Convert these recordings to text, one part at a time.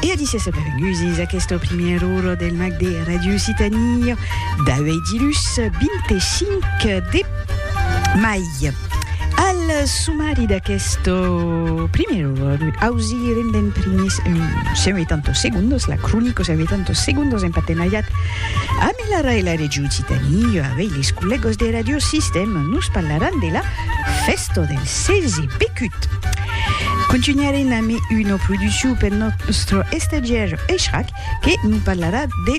E adis e benvenguts a aquesta primièra ora del mag de Radio Occitanie d'auèi dilhus 25 de mai. Al sumari d'aquesta primièra ora ausirem d'en primers 180 segundos, la cronica 180 segundos en partenariat amb la RAE la Regió Occitanie, auèi les collègas de Radio Sistema nos parlaràn de la Festo del Sezi Pecut! Contunharem amb una produccion pel nòstre estagiaire Echrac que nos parlarà de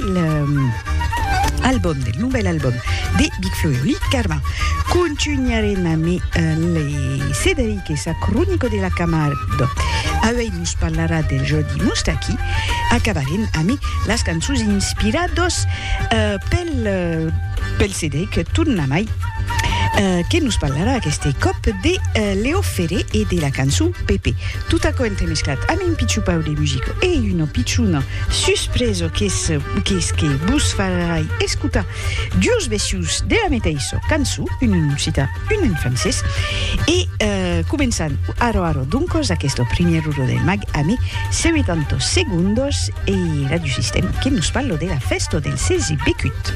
l'album, del novèl album de Big Flo e Oli Carmin. Contunharem amb le Cederic e sa cronica de la Camarde. Auèi nos parlarà del Jordi Moustaki. Acabarem amb las cançons inspiradas pel Cederic, tornamai. que nos parlarà aqueste còp de Leo Ferré e de la cançon Pepe. Tot aquò entremesclat amb un pichupau de musica e una pichona suspresa qu'es qu'es que vos farai escotar dues vecius de la meteissa cançon, una en occitan, una en francés. E començam ara ara doncas aquesta primièr ora del mag ame 70 segondas e Radiosistèma que nos parla de la fèsta del 16 becut.